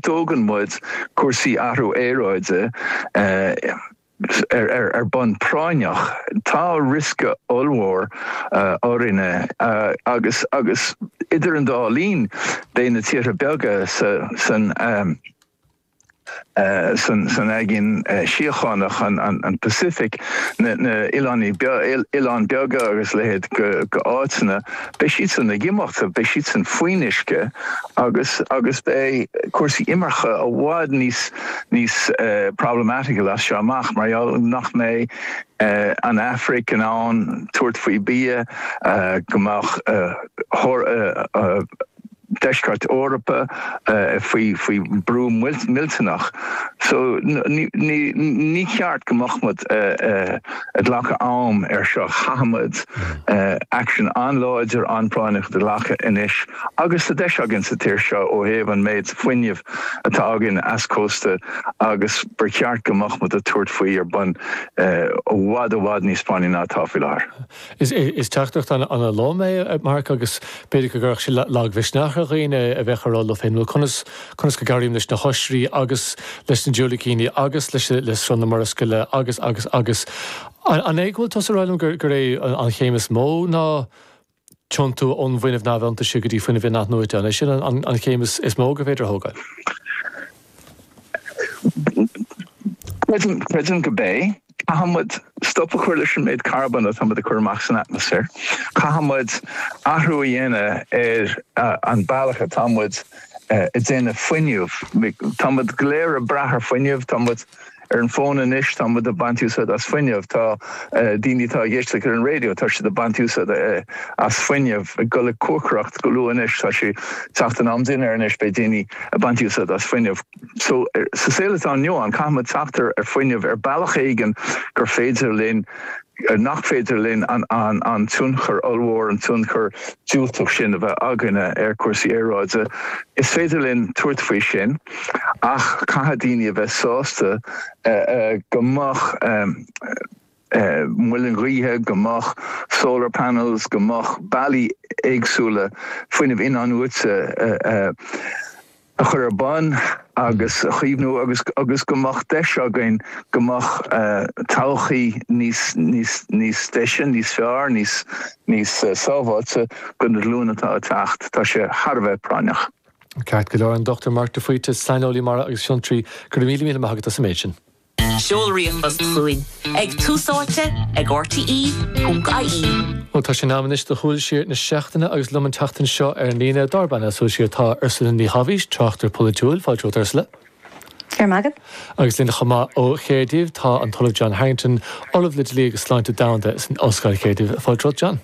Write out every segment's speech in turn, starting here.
Tógann muid cúrsaí athrú aeráide ar bun práinneach. Tá riosca ollmhór orainne agus idir an dá linn beidh na tíortha beaga san aigéan síochánach, an Pacific, na hoileáin beaga agus leithéid de áiteanna, Beidh siadsan ag imeacht, beidh siadsan faoin uisce agus agus beidh cúrsaí imirce i bhfad níos níos problematical as seo amach mar gheall nach mbeidh an Afraic in ann tabhairt faoi bia go mbeadh thoradh deisceart Eorpa faoi brú millteanach so ní cheart go mbeadh muid ag glacadh am air seo. Caithfidh muid aicsean an-láidir, an-phráinneach a ghlacadh anois agus tá deis againn sa tír seo ó thaobh an méid fuinnimh atá againn as cósta agus ba cheart go mbeadh muid ag tabhairt faoi ar bun i bhfad, i bhfad níos práinní ná atá faoi láthair. Is teachtaireacht ana lom é, a Mark, agus b'fhéidir go gcuirfeadh sé lag mhisneach ar dhaoine a bheadh ag rá leo féin, bhuel, conas, conas go gcabhraím leis na hoisrí agus leis na diúilicíní agus leis an, le sruth na Murascaille agus, agus, agus. An é go bhfuil tusa ag rá liom gur é an chéim is mó ná tiontú ón bhfuinneamh iontaise go dtí fuinneamh in-athnuaite, an é sin an chéim is mó gur féidir a thógáil? Cinnte, creidim gurb é. Caithfidh muid stop a chur leis an méid carbóin atá muid ag cur amach san atmaisféar. Caithfidh muid athrú a dhéanamh ar an bealach atá muid ag déanamh fuinneamh. Tá muid go léir ag brath ar fuinneamh, tá muid ar an fón anois, tá muid ag baint úsáid as fuinneamh, tá daoine atá ag éisteacht ar an raidió, tá siad ag baint úsáid as fuinneamh, ag dul ag cócaireacht go luath anois, tá sé teacht in am dinnéir anois, beidh daoine ag baint úsáid as fuinneamh. So, sa saol atá inniu ann, caithfidh muid teacht ar fuinneamh ar bealach éigin gur féidir linn nach féidir linn an tionchar ollmhór, an tionchar diúltach sin a bheith againne ar chúrsaí aeráide. Is féidir linn tabhairt faoi sin ach caithfidh daoine a bheith sásta go mbeadh muilinn ghaoithe, go mbeadh solar panels, go mbeadh bealaí éagsúla fuinnimh in-athnuaite, a chur ar bun agus a chaomhnú agus agus go mbeadh deis againn go mbeadh todhchaí níos níos níos deise, níos fearr, níos níos sábháilte do na glúine atá ag teacht. Tá sé thar a bheith práinneach. Ceart go leor, an Dr Mark de Faoite, saineolaí mara agus fiontraí. Go raibh míle míle maith agat as an méid sin. Seol ríomhphost chugainn ag tús áite ag rte.ie. So tá sé in am anois do shúil siar na seachtaine agus liom an tseachtain seo ar an líne dár bpainéal súil siar tá Ursula Ní Shabhaois, tráchtaire polaitiúil. Fáilte romhat Ursula. Go raibh maith agat. Agus linn chomh maith ó Chaerdydd tá an tOllamh John Harrington, Ollamh le Dlí agus Sláinte Domhanda san Ollscoil Caerdydd. Fáilte romhat John.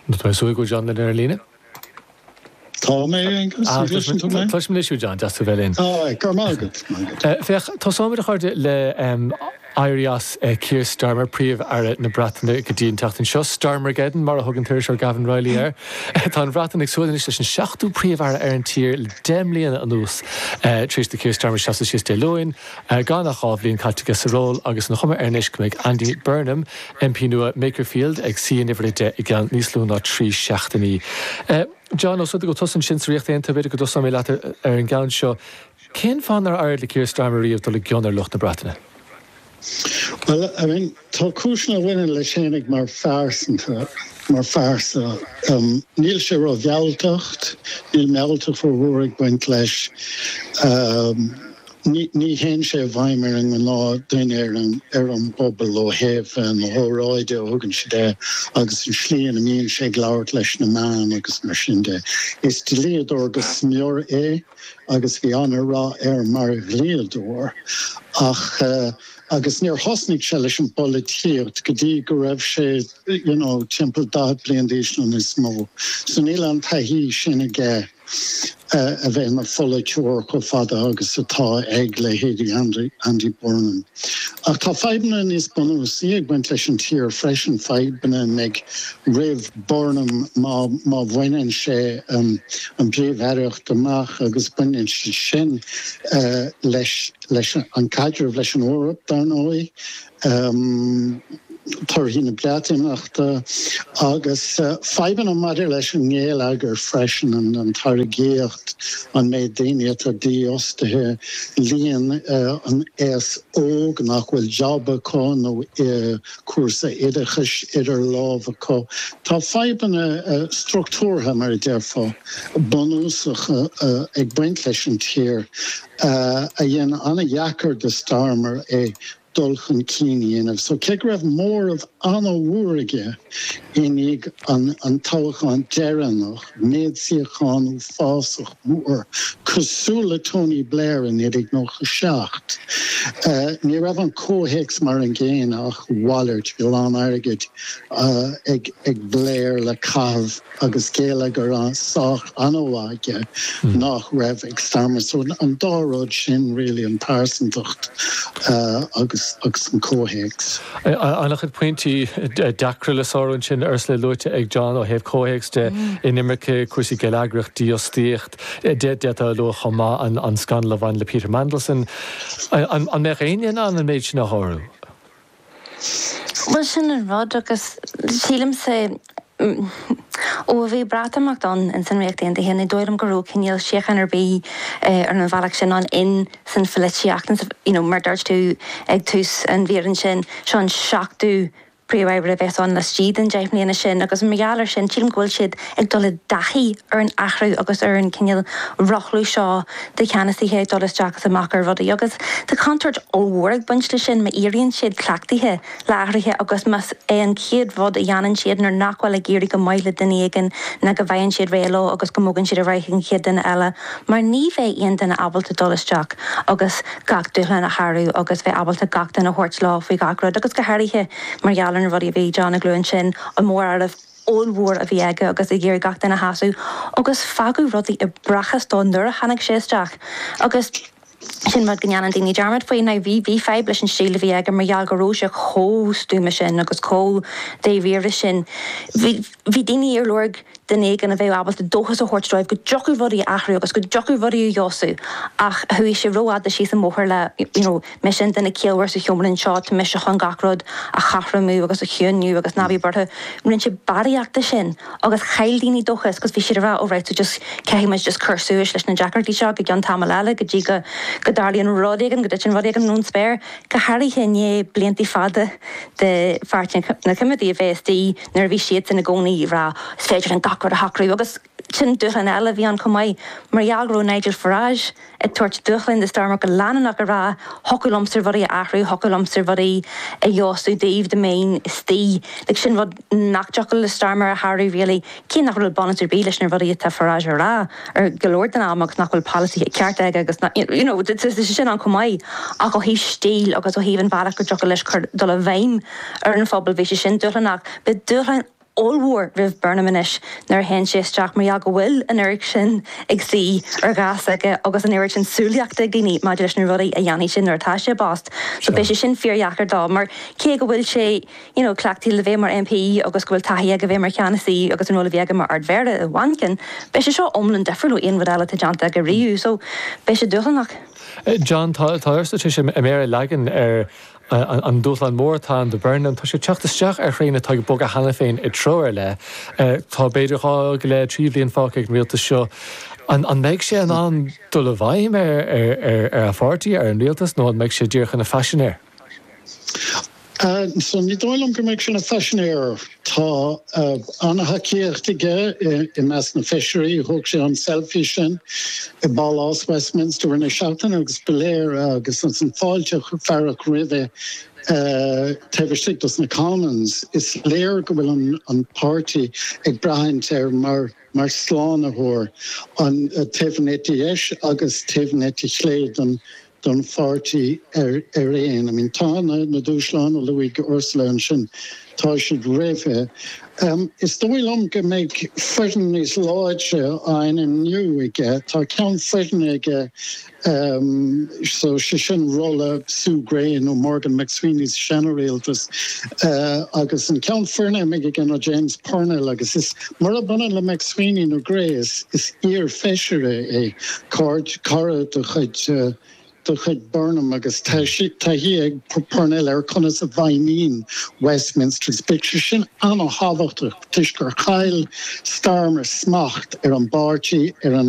An bhfuil súil go bhfuil John linn ar an líne? Tá mé, Aengus. An gcloiseann tú mé? Tá tú anois, a John, deas tú a bheith linn. Tá, é. Go raibh maith agat. Maith agat. Féach, tosaímid, a chairde, le éirí as Keir Starmer, Príomh-Aire na Breataine go dtí an tseachtain seo. Starmergeddon, mar a thug an t-iriseoir Gavan Reilly air. Tá an Bhreatain ag súil anois leis an seachtú Príomh-Aire ar an tír le deich mbliana anuas tar éis do Keir Starmer seasamh síos Dé Luain. Gan ach dhá bhliain caite aige sa ról agus an chuma air anois go mbeidh Andy Burnham, MP nua Makerfield, ag suí in uimhir a deich i gceann níos lú ná trí seachtainí. John, ós rud é go bhfuil tusa ansin sa Ríocht Aontaithe, b'fhéidir go dtosnóidh mé leat ar an gceann seo. Cén fáth nár éirigh le Keir Starmer riamh dul i gcion ar lucht na Breataine? Bhuel, I mean. Tá cúiseanna a bhaineann leis féin ag mar phearsanta, mar phearsa. Níl sé ró-mhealltach, níl mealltacht rómhór ag baint leis. Ní théann sé i bhfeidhm ar an ngnáthdhuine ar an ar an bpobal ó thaobh na hóráidí a thugann sé de agus an slí ina mbíonn sé ag labhairt leis na meáin agus mar sin de. Is dlíodóir go smior é agus bhí an-rath air mar dhlíodóir ach, Agus níor thosnaigh sé leis an bpolaitíocht go dtí go raibh sé, you know, timpeall daichead bliain d'aois nó níos mó. So níl an taithí sin aige a bheith ina pholaiteoir chomh fada agus atá ag leithéidí Andy Burnham. Ach tá fadhbanna níos bunúsaí ag baint leis an tír freisin, fadhbanna a bheidh roimh Burnham má bhaineann sé an phríomh-aireacht amach agus baineann siad sin leis, leis an gcaidreamh leis an Eoraip, dar ndóigh, torthaí na Breatimeachta agus fadhbanna maidir leis an ngeilleagar freisin, an táirgíocht, an méid daoine atá dífhostaithe, líon an aos óg nach bhfuil job acu nó cúrsa oideachais idir lámh acu. Tá fadhbanna structúrtha, mar a déarfá, bunúsacha ag baint leis an tír. a dhein an-deacair do Starmer é dul chun cinn a dhéanamh so cé go raibh móramh an-mhór aige i ndiaidh an toghcháin deireanach, méid suíochán uafásach mór, cosúil le Tony Blair i 1997, ní raibh an comhthéacs mar an gcéanna ach a mhalairt, bhí a lán airgid ag Blair le caitheamh. agus geilleagar sách an-mhaith aige nach raibh ag Starmer so an dá rud sin really an pearsantacht agus an comhthéacs. An-chuid pointí deacra le sárú ansin, Ursula, luaite ag John ó thaobh comhthéacs de, inimirce, cúrsaí geilleagrach, dífhostaíocht, d'fhéadfá a lua chomh maith an scannal a bhain le Peter Mandelson. An mbeadh éinne in ann an méid sin a shárú? Bhuel, sin an rud agus sílimse ó bhí Breatimeacht ann in san Ríocht Aontaithe, ní dóigh liom go raibh cinéal síocháin ar bith ar an bhealach sin ann in san phoilitíocht you know mar dúirt tú ag tús an mhír ansin, seo an seachtú príomh-aire a bheas ann laistigh den deich mbliana sin agus mar gheall ar sin sílim go bhfuil siad ag dul i dtaithí ar an athrú agus ar an cineál rothlú seo de cheannasaithe ag dul isteach is amach ar rudaí agus tá contúirt ollmhór ag baint leis sin má éiríonn siad cleachtaithe le hathruithe agus más é an chéad rud a dhéanann siad nuair nach bhfuil ag éirí go maith le duine éigin ná go bhfaigheann siad réidh leo agus go mbogann siad ar aghaidh ag an chéad duine eile mar ní bheidh aon duine ábalta dul isteach agus gach dúshlán a shárú agus bheith ábalta gach duine a thabhairt leo faoi gach rud agus go háirithe mar gheall ar na rudaí a bhí John ag lua ansin an móramh ollmhór a bhí aige agus ag iarraidh gach duine a shásamh agus fágadh rudaí i bprácás dó nuair a tháinig sé isteach agus sin rud go ndéanann daoine dearmad faoi. Now bhí, bhí fadhb leis an stíl a bhí aige mar gheall go raibh sé chomh stuama sin agus chomh dáiríre sin. Bhí, bhí daoine ar lorg duine éigin a bheadh ábalta dóchas a thabhairt dóibh go dtiocfadh rudaí a athrú agus go dtiocfadh rudaí a fheabhsú ach chuaigh sé rófhada síos an bóthar le, you know, Mise an duine ciallmhar sa tseomra anseo, tá mise chun gach rud a chothromú agus a chiúniú agus ná bí buartha. Rinne sé barraíocht de sin agus chaill daoine dóchas agus bhí siad ag rá ó right so just caithfidh muid just cur suas leis na deacrachtaí seo go cionn tamall eile go dtí go go dtarlaíonn rud éigin go dtiteann rud éigin ón spéir go háirithe i ndiaidh blianta fada de pháirtí na Coimeádaigh a bheith istigh nuair a bhí siadsan i gcónaí ag rá is féidir linn gach rud a shocrú agus B'shin dúshlán eile a bhí ann chomh maith mar gheall go raibh Nigel Farage ag tabhairt dúshláin do Starmer go leanúnach ag rá thiocfadh liomsa rudaí a athrú, thiocfadh liomsa rudaí a fheabhsú daoibh, dá mbeinn istigh. Like sin rud nach dtiocfadh le Starmer a shárú really. Cé nach raibh bunús ar bith leis na rudaí atá Farage a rá ar go leor den am agus nach bhfuil polasaí ceart aige agus nach, you know, tá sé sin ann chomh maith ach ó thaobh stíl agus ó thaobh an bhealach go dtiocfadh leis cur, dul i bhfeidhm ar an phobal bhí sé sin dúshlánach. Beidh dúshlán ollmhór roimh Burnham anois nuair a théann sé isteach mar gheall go bhfuil an oiread sin ag suí ar ghas aige agus an oiread sin súilíochta ag daoine maidir leis na rudaí a dhéanfaidh sé nuair atá sé i bpost so beidh sé sin fíordheacair dó mar cé go bhfuil sé you know cleachtaithe le bheith mar MP agus go bhfuil taithí aige bheith mar cheannasaí agus an ról a bhí aige mar Ardmhéara i Manchain beidh sé seo iomlán difriúil ó aon rud eile atá déanta aige riamh so beidh sé dúshlánach. John, Tá, tá Ursula tar éis a méar a leagan ar An dúshlán mór atá ann do Burnham, tá sé ag teacht isteach ar thraein atá ag bogadh cheana féin i dtreo ar leith. Tá b'fhéidir dhá go leith, trí bhliain fágtha ag an rialtas seo. An mbeidh sé in ann dul i bhfeidhm ar a pháirtí, ar an rialtas, nó an mbeidh sé díreach ina phaisinéir? Ní dóigh liom go mbeidh sé ina phaisinéir. Tá an-thacaíocht aige i measc na feisirí. Thóg sé an 'selfie' sin i bPálás Westminster roinnt seachtainí agus ba léir agus an fáilte a fearadh roimhe taobh istigh dos na Commons. Is léir go bhfuil an páirtí ag breathnú air mar slánaitheoir ar thaobh an eite dheis agus ar thaobh an eite chlé den don pháirtí araon. I mean, tá na dúshláin a luaigh Ursula ansin, tá siad réabhtha. Is dóigh liom go mbeidh foireann níos láidre á ainmniú aige. Tá ceann foirne aige, so sé sin ról Sue Gray nó Morgan McSweeney sa seana-rialtas, agus an ceann foirne a bheidh aige ná James Purnell agus is. Murab ionann le McSweeney nó Gray, is iar-Feisire é, car, cara de chuid Burnham agus taithí ag Purnell ar conas a fheidhmíonn Westminster. Beidh sé sin an-thábhachtach toisc gur chaill Starmer smacht ar an bpáirtí, ar an.